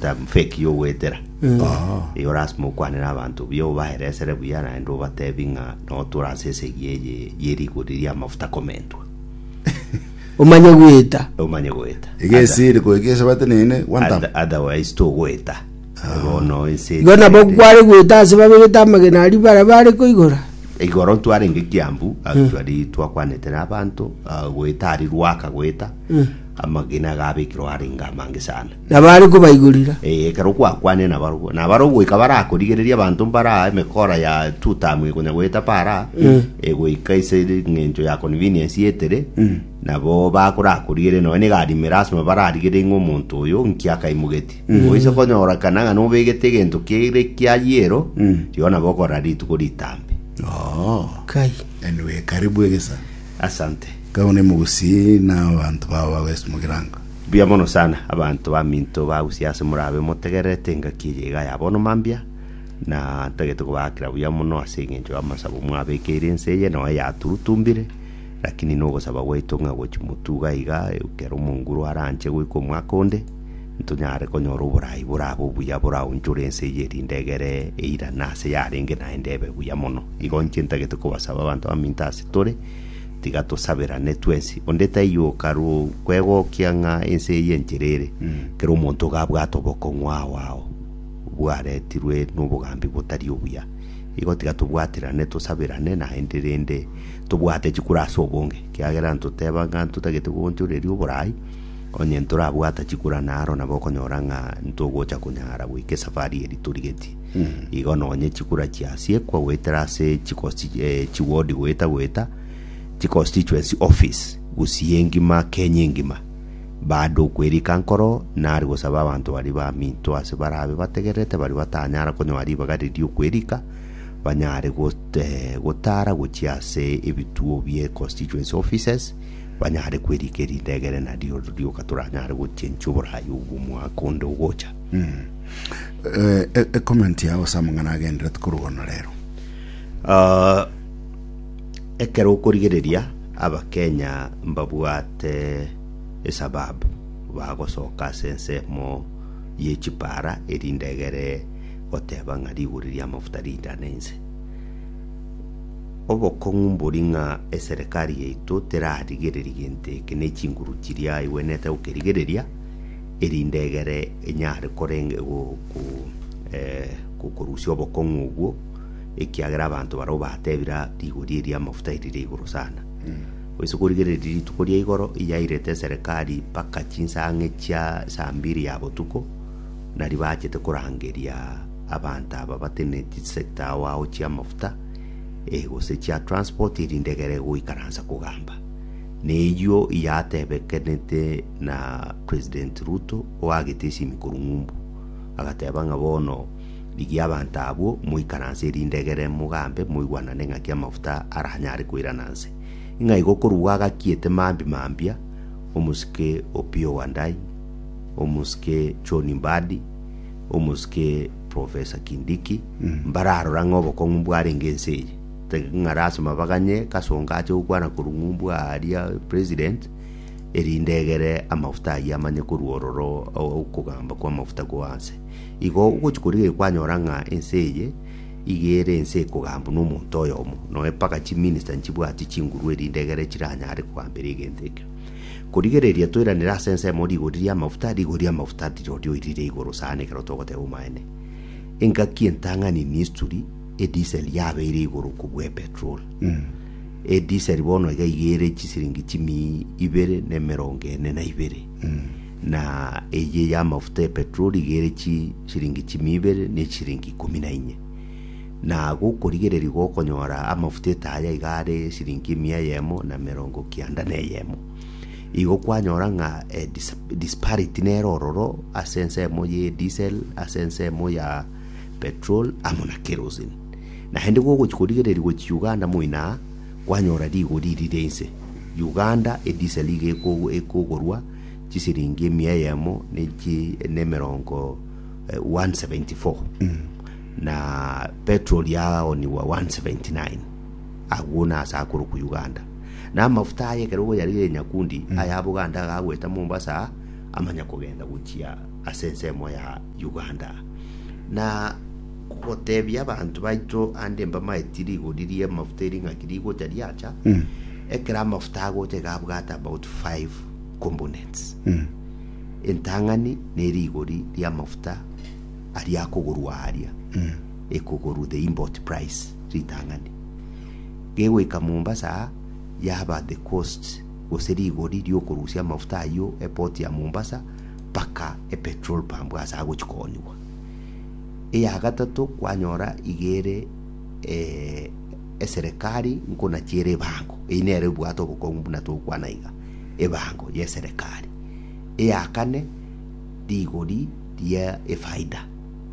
Time fake y'ogoetera. Eyi orasime okwane n'abanto buya, obaeresere buya naende obatebi ng'a notura ase esegi eye ye rigori ri'amafuta komentwa. Omanye goeta. Omanye goeta. Iga esiri goika ase bateneine one time. Other- Otherwise togoeta. Bono ense Igo nabo etigerete. kware goeta ase babegete amagena aria bare bare koigora. igoro ntwarenge kiambu agwo twari twakwanete n'abanto ah, goeta ari rwaka goeta amagena gabekirwe arenge amange sana Na baare kobaigurera. Ee, ekero gwakwanire nabarabwo, nabarabwo goika barakorigereria abanto mbaraa emekora ya Tutamu eye konya goeta Paraa, e goika ase eng'encho ya convenience y'etere, nabo bakorakorigereria nonye negari ime lasima bararigererie ng'a omonto oyo nki akaimogetie. Oise konyora kana ng'a nobegete egento kere kia yellow, rigo nabo okorora rituko ritambe. Oo, Kai. anyway, karibu egesa. Asante. Kau ne mogusii na abanto bao bagoesimoki rango. Mbuya mono sana, abanto baminto bagusia ase morabe motegererete engaki eye iga ya bono mambia, na ntagete kobaakera buya mono ase engencho y'amasabo mwabekeire ense eye noe yaturutumbire, rakini nogosaba gwaito ng'a gochi motuga iga ekero omonguru aranche goika omwaka onde, ntonyare konyora oborai borabe obuya boraonchore ense eye erinde egere eirane ase yarenge naende ebe buya mono. Igo inche ntagete kobasaba abanto baminto ase tore, Tiga tosaberane twensi, onde taiyo okarwo kwegokia ng'a ense eye enchera ere, kera omonto iga abwate obokong'u ao ao bwaretirwe nobogambi botari obuya. Igo tiga tobwaterane, tosaberane, naende rende tobwate chikura ase obonge, ekiagera ntoteba ng'a ntotagete koonchoreria oboraai, onye ntorabwata chikura naro nabo okonyora ng'a ntogocha konyara goika esafari eri torigetie. igo nonye chikura chiasiekwa goetera ase chikosi chi- eh, chiwodi goeta goeta chiconstituency office gusii engima kenya engima baada okwerika nkoro nari gosaba abanto baria baminto ase barabe bategererete baria batanyara konyoa ribaga riria okwerika banyare got- eh, gotara gochia ase ebituo bie constituency offices banyare kwerika erinde egere nario rioka toranyare gochenchwa oborayi obwo omwaka onde ogocha Eh, e- ekomenti yao ase amang'ana agenderete korwa ono rero Ah, ekero okorigereria abakenya mbabwate esababu bagosoka ase ensemo ye chipara erinde egere goteba ng'a rigori ria amafuta rindane inse obokong'u mbori ng'a eserekari yaito terarigereri gento eke ne chinguru chiria aigwenete gokerigereria erinde egere enyare korenge go, go, eh, go- korusia obokong'u obwo, ekiagera abanto barabwo batebire rigori eria amafuta erire igoro sana. Goise korigereria rituko ria igoro yairete eserekari mpaka chinsa ang'e chia saa mbiri ya botuko, nari bachete korangeria abanto aba bateneneti sector ao ao chia amafuta, eh, gose chia transport erinde egere goikaransa kogamba. Neyio yatebekanete na President Ruto oagete esimi korwa Ng'umbu, agateba ng'a bono rigia abanto abwo moikaranse erinde egere mogambe moigwanane ng'aki amafuta aranyare koirana nse. Ng'a igo korwa agakiete mambi mambia omosike Opiyo Wandayi, omosike John Mbadi, omosike Professor Kindiki mbararora ng'a obokong'u mbwarenge ense eye. Taiga ng'a lasima baganye Kasongo ache gokwana korwa ng'umbu aaria president, erinde egere amafuta ayio amanye korwa ororo okogamba kw'amafuta goa nse. Igo ogochi korigereria kwanyora ng'a ense eye iga ere ense ekogambwa nomonto oyomo, nonya mpaka chiminister nchibwati chinguru erinde egere chiranyare kogambera egento ekio. Korigereria toiranere ase ensemo rigori ri'amafuta, rigori ri'amafuta rirori oirire igoro sana ekero togoteba omaene. Engaki entang'ani ni history. Edisel yabeire igoro kobua epetrol. Edisel bono iga iga ere chisiringi chimi ibere na emerongo ene na ibere. Na eye ya amafuta ya petrol iga ere chisiringi chimi ibere na chisiringi ikomi na inye. Na gokorigereria gokonyora amafuta etaya iga are siringi emia eyemo na emerongo kianda na eyemo. Igo kwanyora ng'a eh, dis- disparity nere ororo ase ensemo ya edisel ase ensemo ya petrol amo na kerosene. Naende gogochia korigereria gochia Uganda moina aa, kwanyora rigori rire inse. Uganda edisel iga eko- ekogorwa chisiringi emia eyemo na echi- na emerongo eh, 174 na petrol yaoniwa 179 agwo nase akorokwa uganda na amafuta aye ekero ogoyarigeria nyakundi aya aboganda agagweta mombasa aa, amanya kogenda gochia ase ensemo ya Uganda. Na gotebia abanto baito ande mbamaeti rigori ria amafuta ering'aki rigocha riacha, ekero amafuta agocha iga abwate about five components. Entang'ani na erigori ria amafuta aria akogorwa aria, ekogorwa the import price ritang'ani. Gegoika Mombasa aa, yaba the cost gose rigori riokorusia amafuta ayio eport ya Mombasa, mpaka epetrol pump ase agochia koonigwa. Eya gatato kwanyora iga ere eserekari nkona chiere ebango, eyio nere ebwate obokong'u buna togokwana iga, ebango ya eserekari. Eya kane rigori ria efaida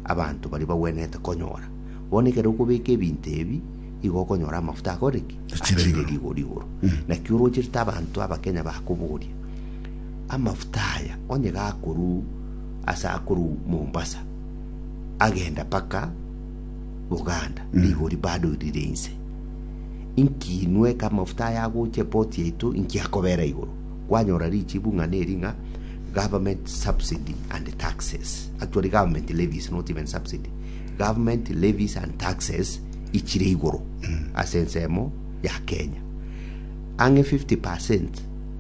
abanto baria bagwenerete konyora. Bono ekero okobeka ebinto ebi igo okonyora amafuta akorire ki? Achire rigori igoro. Naki orocherete abanto abakenya bakoboria Amafuta aya onye gakorw ase akorw Mombasa agenda mpaka Buganda rigori bado rire inse. Inki inwe eke amafuta aya agocha eport yaito inki akobera igoro? Kwanyora richibu ng'a neri ng'a government subsidy and taxes. Actually government levies not even subsidy. Government levies and taxes ichire igoro ase ensemo ya Kenya. Ang'e 50%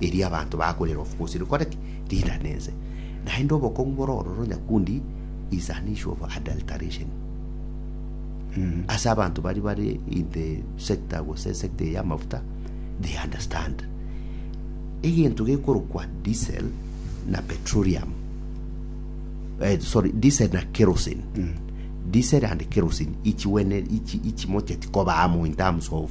erio abanto bakorera obofusi rikore ki? Rirane ense. Naende obokong'u bore ororo nyakundi is an issue of adulteration. Ase abanto baria bare in the sector gose sector eye y'amafuta they understand. Egento gekorokwa diesel na petroleum eh, sorry diesel na kerosene diesel and kerosene ichiwene ichi ichimocheti koba amo in terms of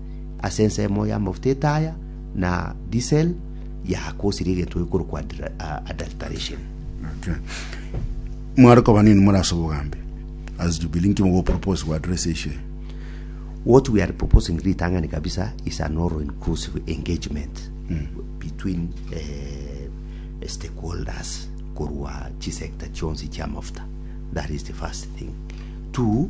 ase ensemo y'amafuta etaya na disel yakosirie egento gekorokwa adra- a- adulteration Okay. Mware koba nini more ase obogambi as Jubilee nki mogopropose go address issue eye? what we are proposing ritang'ani kabisa is an all inclusive engagement between eh, stakeholders korwa chisector chionsi chiamafuta that is the first thing two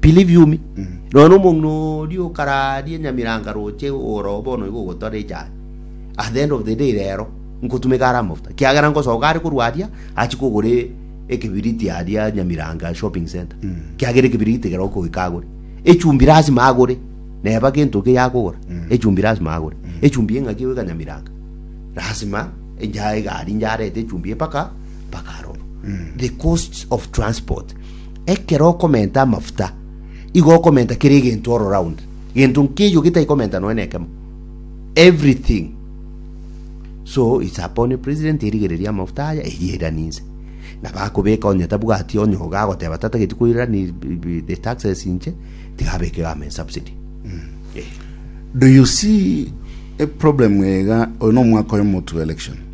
Piliviumi, nonya nomong'ina oria okararia Nyamiranga roche ogoro oo bono igo ogotwara echaye. At the end of the day rero, nkotumeka are amafuta, kiagera nkosoka are korwa aria, achie kogora e- ekebiriti aria Nyamiranga shopping centre, kiagera ekebiriti ekero okoika agore. Echumbi lasima agore, neba gento keiyo akogora, echumbi lasima agore. Echumbi eng'aki egoika Nyamiranga, lasima encha egari inche arete echumbi mpaka mpaka aroro. The cost of transport. Ekero okomenta amafuta, igo okomenta kera egento all round. Gento nkeiyo getai komenta nonya nekemo. Everything. So it's upon you president erigereria amafuta aya eyerani nse. Na bakobeka onye tabwati onye oga agoteba tatageti koirani the taxes inche tigabeke government subsidy. Eh. Do you see a problem ega oyo no omwaka oyo motu election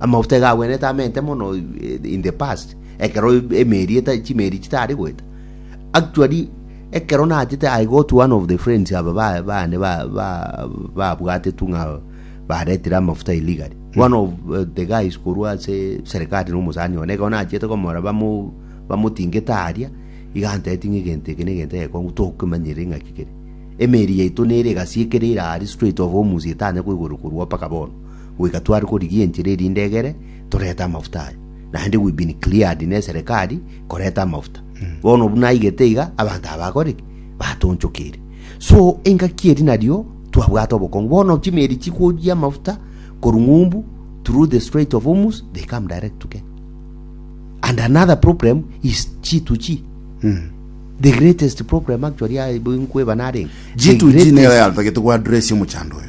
Amaguta iga agwenerete amente mono in the past, ekero emeeri eta chimeeri chitari goeta. Actually, ekero nachete I got one of the friends aba ba bane ba ba babwatetwe ng'a baretire amafuta illegally. One of uh, the guys korwa ase serikali na omosani one ekero nachete komora bamu bamutingete aria iganteti ng'a egento eke na egento egekong'u tokemanyire ng'aki kere. Emeeri yaito nere egasi ekere ira aria straight of Hormuz etanya koigoro korwa mpaka bono. goika tware korigia enchera erinde egere torete amafuta aye. Naende we've been cleared neserekari koreta amafuta. Bono buna aigete iga abanto aba bakore ki? Batonchokire. So engaki eri nario twabwate obokongu. Bono chimeri chikoyia amafuta korwa ng'umbu through the Strait of Hormuz they come direct to Kenya. And another problem is G2G. The greatest problem actually ah, nkweba narenge. The G2G nero greatest- yatagete gwa address omochando oyo.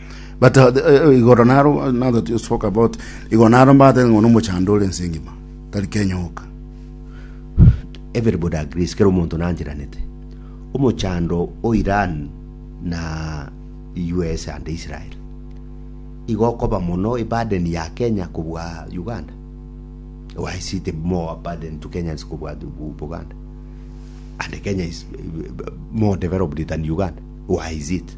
But uh, the- eh, igoro naro now that you spoke about igoro naro mbate ngono mochando ore ense engima tari Kenya oka everybody agrees kera omonto nanchiranete omochando o iran na us and israel igokoba mono ibaden ya kenya kobwa uganda why is it more burden to kenyans kobwa Bu- buganda and kenya is eh, more developed than uganda why is it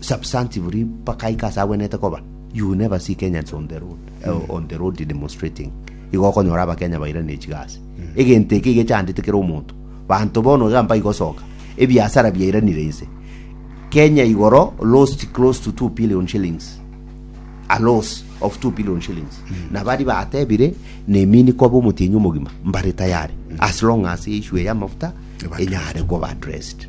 substantively mpaka aike ase agwenete koba you will never see kenyans on the road uh, on the road demonstrating igo okonyora abakenya bairane chigasi egento eke iga chandete kera omonto banto bono iga mpa igosoka ebiasara biairanire inse kenya igoro lost close to 2 billion shillings a loss of 2 billion shillings na bari batebire nemini koba omotienyi omogima mbare tayari as long as issue ya mafuta enyare koba addressed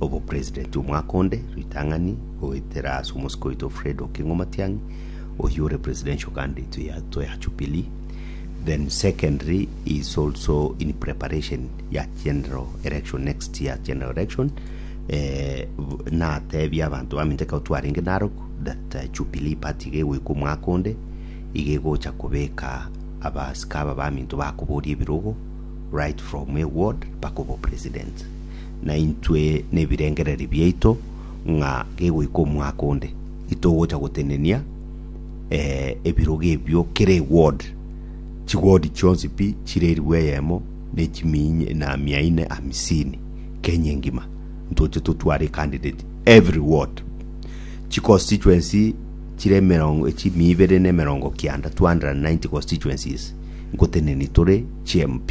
Obopresident omwaka onde, ritang'ani goetera ase omosike oito Fred Okengo Matiang'i, oyio ore presidential candidate ya to ya Jubilee. Then secondary is also in preparation ya general election next year general election. Eh, natebia abanto baminto ekero twarenge Narok that uh, Jubilee party iga egoika omwaka onde iga egocha kobeka abasika aba baminto bakoboria ebirogo right from a ward mpaka obo president naintwe nebirengererio biaito ng'a gegoika omwaka onde itogocha gotenenia ebirogo ebio kera eward, chiward chionsi pi chire eribu eyemo na mia ine hamsini Kenya engima ntoche totware candidate every ward. Chiconstituency chire emerongo chimia ibere na emerongo kianda 290 constituencies ngoteneni tore chi MP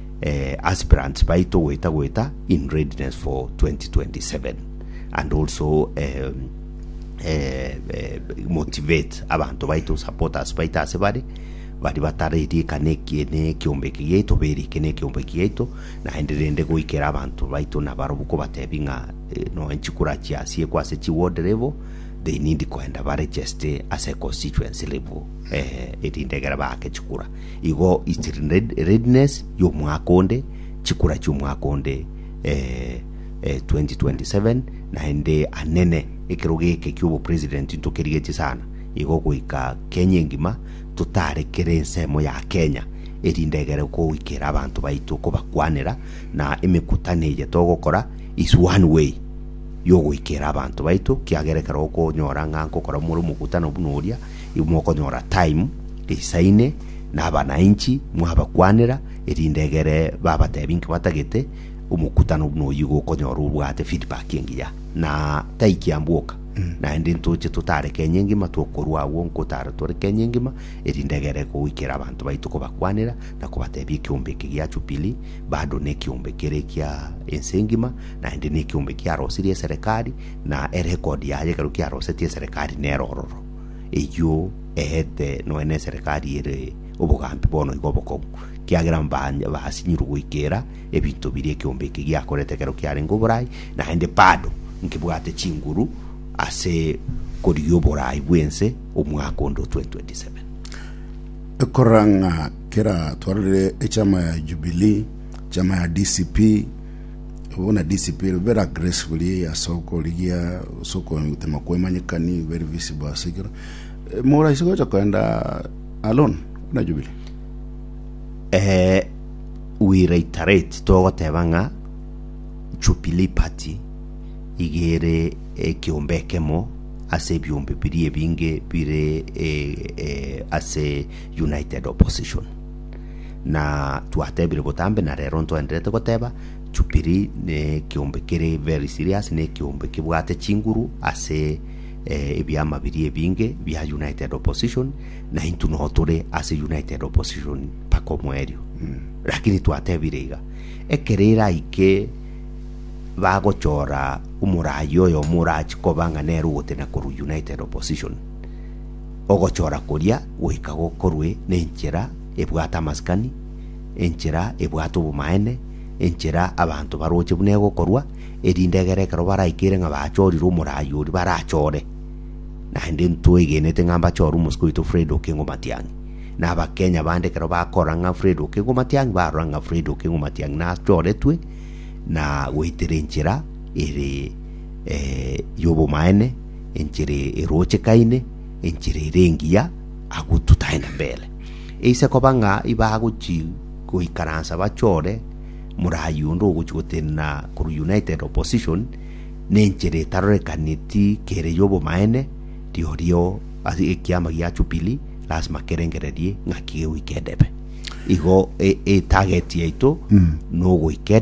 aspirants baito goeta goeta in readiness for 2027 and also um, eh, eh, motivate abanto baito supporters baito ase bare bari batarerika neki nekiombeki giaito berike nekiombeki giaito naende rende goikera abanto baito nabarobu kobatebi ng'a eh, nonya chikura chiasie kwa ase chiward level they need koenda baregeste ase constituency level eh, erinde egere baake chikura Igo is readiness y'omwaka onde, chikura chi'omwaka onde 2027, naende anene ekerogo eke ki'obopresident ntokerigetie sana igo goika Kenya engima totarekere ensemo ya Kenya erinde egere koikera abanto baito kobakwanera na emekutano eye togokora is one way y'ogoikera abanto baito kiagera ekero okonyora ng'a nkokora more omokutano buna oria, Igo mokonyora time risaine na abanainchi mwabakwanera, erinde egere babatebi inki batagete, omokutano buna oyio igo okonyora obwate feedback engiya. Na tai kiamboka, naende ntoche totare Kenya engima tokorwa agwo nkotara tore Kenya engima, erinde egere goikera abanto baito kobakwanera na kobatebia ekiombe eke gia Jubilee, bado nekiombe kere kia ense engima, naende nekiombe kiarosirie eserekari, na erekodi yaye ekero kiarosetie eserekari nero ororo. Eyio eete noe neserekari ere obogambi bono igo obokong'u, kiagera mbaanya basinyirwe goikera ebinto biria ekeombe eke giakorete ekero kiarenge oborai, naende bado nkebwate chinguru ase korigia oborai bw'ense omwaka onde o 2027. Ekorora ng'a kera twarorire echama ya Jubilee, chama ya DCP, Buna disipiri bera gracefully ase okorigia ase okotema kwemanyekani very visible ase ekero Eh, moraisi gocha koenda alone buna jubili eh, we reiterate togoteba ng'a Jubilee Party igere ekiombe ekemo ase ebiombe biria ebinge bire eh, eh, ase United Opposition Na twatebire botambe na rero ntwenderete goteba, Chupiri nekeombe kere very serious, nekeombe kebwate chinguru ase eh, ebiama biria ebinge bia United Opposition, na intu no tore ase United Opposition mpaka omoerio. Lakini twatebire iga, ekero eraike bagochora omoraai oyomo orachi koba ng'a nere ogotena korwa United Opposition, Ogochora koria goika gokorwe nenchera ebwate amasikani, enchera ebwate obomaene, enchera abanto baroche buna egokorwa, erinde egere ekero baraikere ng'a bachorire omoraai oria barachore. Naende ntwegenete ng'a mbachore omosike oito Fred Okengo Matiang'i. Na abakenya bande ekero bakora ng'a Fred Okengo Matiang'i barora ng'a Fred Okengo Matiang'i nachoretwe na goetera enchera ere yobomaene, enchera erochekaine, enchera ere engiya, agwo tutaenda mbere. Eise koba ng'a ibagochia goikaransa bachore morayi onde ogochia gotenena korwa United Opposition, na enchera etarorekaneti kere y'obomaene, rirorio ase ekiama gia Jubilee lasima kerengererie ng'aki gegoika edebe. Igo e- etageti yaito nogoika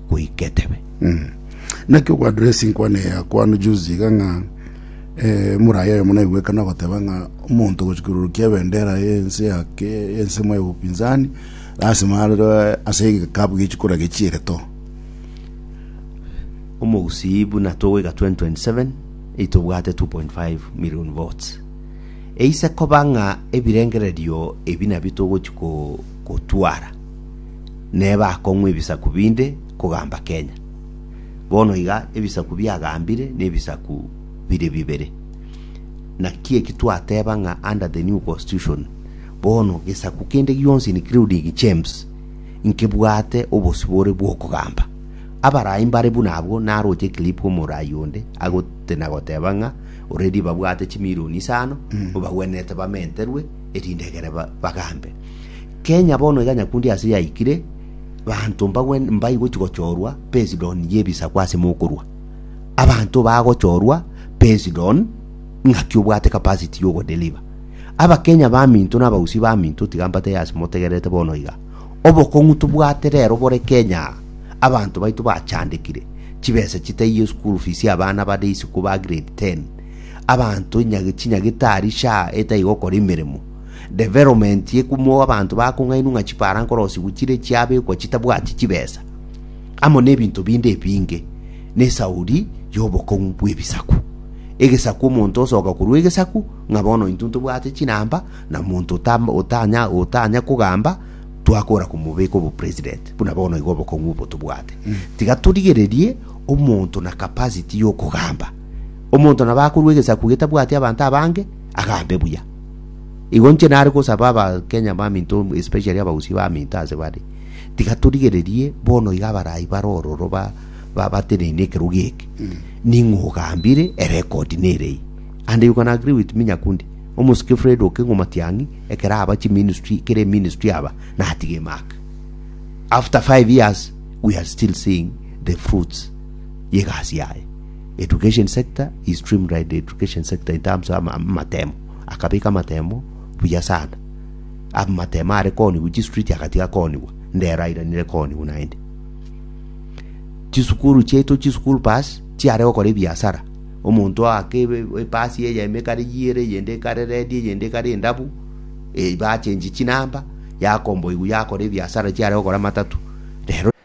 goika etebe. Naki okoandora esinkwana eye yakwano juzi iga ng'a Emuraia oyomo naigwekana ogoteba ng'a omonto ogochikururukia ebendera y'ense yake y'ensemo ya upinzani lasima arerwe ase egekabu gie chikura gie chiereto. Omogusii buna togoika 2027 eitobwate 2.5 million votes. Eise koba ng'a ebirengererio ebi nabio togochia gotwara. neba akong'wa ebisaku binde kogamba Kenya. Bono iga ebisaku biagambire nebisaku bire bibere. Naki eki twateba ng'a under the new constitution bono gesaku kende gionsi including James nkebwate obosio bore bw'okogamba. Abarai mbare buna abwo naroche clip omorai onde agotenagoteba ng'a already babwate chimilioni isano obagwenerete bamenterwe erinde egere ba- bagambe. Kenya bono iga nyakundi ase yaikire, banto mbagwen- mbaigwe chigochorwa based on yebisaku ase mokorwa. Abanto bagochorwa based on ng'aki obwate capacity yogo deliver. Abakenya baminto na abagusii baminto tiga mbatebie ase motegererete bono iga, obokong'u tobwate rero bore Kenya aa, abanto baito bachandekire, chibesa chitaiyo school fees ya abana bade isiko ba grade ten, abanto enyage chinyagitari sha etai gokora emeremo development ekumo abanto bakong'ainwa ng'a chipara nkorosigwa chire chiabekwa chitabwati chibesa amo n'ebinto binde ebinge n'esauri y'obokong'u bw'ebisaku egesaku omonto osoka korwa egesaku ng'a bono intwe ntobwate chinamba na monto otam- otanya otanya kogamba twakora komobeka obo president buna bono igo obokong'u obo tobwate tiga torigererie omonto na capacity y'okogamba Omonto nabo akorua egesaku getabwati abanto abange, agambe buya. Igo inche nare gosaba abakenya baminto especially abagusii baminto ase bare, tiga torigererie bono iga abarai bare ororo ba ba bateneine ekerogo eke. Ning'o ogambire erekodi nere eye. And you can agree with me Nyakundi. Omosike Fred Okengo Matiang'i ekero aba chiministry kere eministry aba natiga emaka. After five years we are still seeing the fruits y'egasi yaye. Education sector he streamlined the education sector in terms of ama- amatemo akabeka amatemo buya sana amatemo are kooniwa chistreet agatiga kooniwa ndero airanire kooniwa naende chisukuru chiaito chisukuru pass chiare gokora ebiasara omonto oake ebe- epasi eyemo ekare yiere eyende ekare redi eyende ekare endabu eh, bachenchi chinamba yakomboigwa yakora ebiasara chiare gokora amatatu rero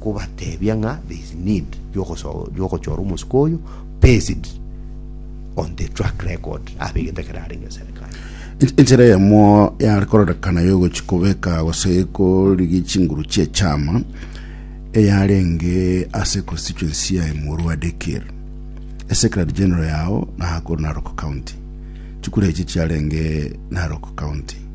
kobatebia ng'a there is need yogochora omosiko oyo based on the track record abe egento ekero arenge serikali Enchera eyemo yare kororekana yogochi kobeka gose korigia chinguru chia echama eyarenge ase constituency ya Imurwa Dekir Secretary General yao Nakuru Narok County. Chikura echi chiarenge Narok County.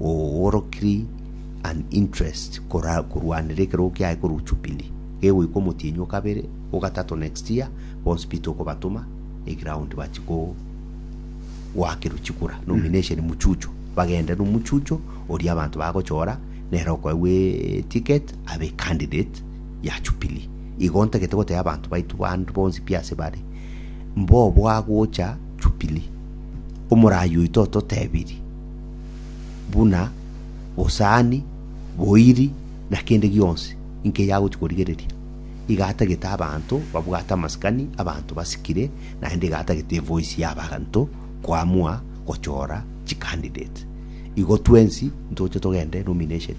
ogoworokiri an interest kora korwanera ekerogo kiaye korwa Jubilee gegoika omotienyi o kabere o gatato next year bonsi Peter okobatoma e ground bachi ko goakerwa chikura nomination muchucho bagende nomuchucho oria abanto bagochora nere okoegwa e ticket abe candidate ya Jubilee igo ntagete gotebia abanto baito bande bonsi pi ase bare mbobo agocha Jubilee omorayi oito ototebirie buna bosani, boiri, na kende gionsi inki yagochia korigereria. Iga atagete abanto babwate amasikani, abanto basikire, naende iga atagete evoice ya abanto koamua gochora chicandidate. Igo twensi ntoche togende nomination.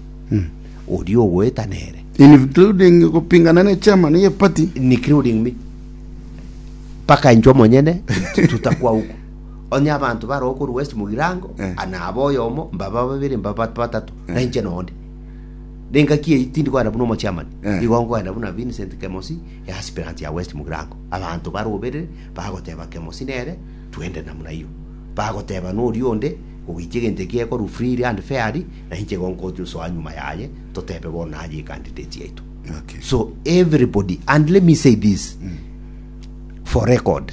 Oria ogoeta nere. Including gopingana ne chairman ye party. including me mpaka intwe monyene tutakwa huko Onye abanto baroa okorwa west mogirango, Eh. ah, naba oyomo, mbaba babere, mbaba batato, na inche nonde. Nengaki eyio tindi kogenda buna omochiamani, Eh. igo nkogenda buna Vincent Kemosi, easpirant ya west mogirango. Abanto baroberere, bagoteba Kemosi nere, twende namuna eyio. Bagoteba noria onde, ogoitia egento ekio ekorwa freely and fairly, na inche igo nkosoa nyuma yaye, totebe bono naye ecandidate yaito. Okay. So everybody, and let me say this for record,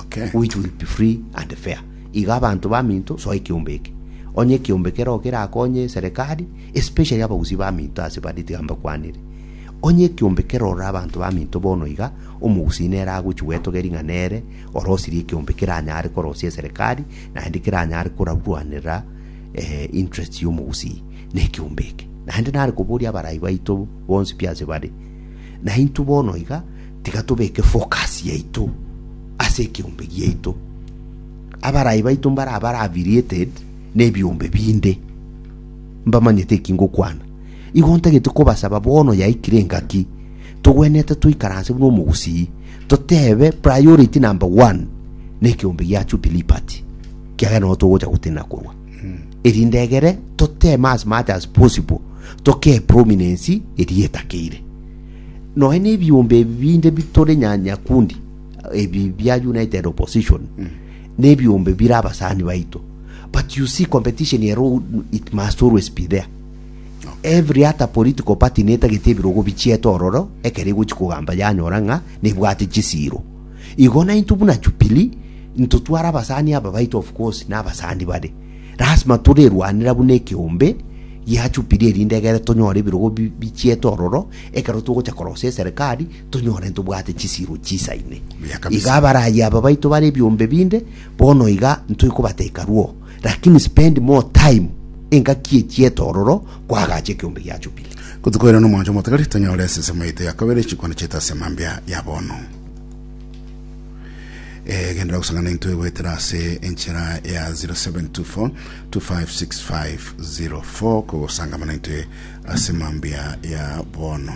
Okay. which will be free and fair iga abanto baminto soa ekeombe eke onye ekeombe keroo kerakonye serikali especially abagusii baminto ase bare tiga mbakwanere onye ekeombe kerorora abanto baminto bono iga omogusii nere agochi gwetogeri ng'a nere orosirie ekeombe keranyare korosia eserikali naende keranyare korarwanera eh, interest ya omogusii na ekeombe eke naende nare koboria abarai baito bonsi pi ase bare na intwe bono iga Tiga tobeke focus yaito ase ekeombe giaito. Abarai baito mbare abare affiliated nebiombe binde, mbamanyete eki ngokwana. Igo ntagete kobasaba bono yaikire engaki, togwenerete toikaranse buna omogusii, totebe priority number one nekeombe gia Jubilee Party, kiagera nigo togocha gotenena korwa. Erinde egere toteme as much as possible, tokee prominence eria etakeire. Nonya nebiombe ebi binde bitore nya nyakundi ebi bia United Opposition nebiombe bire abasani baito but you see competition ero it must always be there every ata political party netagete ebirogo bichiete ororo ekero egochi kogamba yanyora ng'a nebwate chisiro igo nainto buna Jubilee ntotware abasani aba baito of course na abasani bare Lasima torerwanera buna ekeombe gia Jubili erinde egere tonyore ebirogo bi- bichiete ororo ekero togocha korosia eserekari tonyore ntobwate chisiiro chisaine. Buya kabisa. Iga abaraayi aba baito bare ebiombe binde bono iga ntoikobateka rwo, lakini spend more time engaki echiete ororo kwagacha ekeombe gia Jubili. Kotukoirana omwancho omotagari, tonyore esesemo yaito ya kabere, chikwana chiaito ase mambia ya bono. Eh, gendera gusangana into egwetera ase enchera ya 0724 kogosanga mana into ase mambia ya bono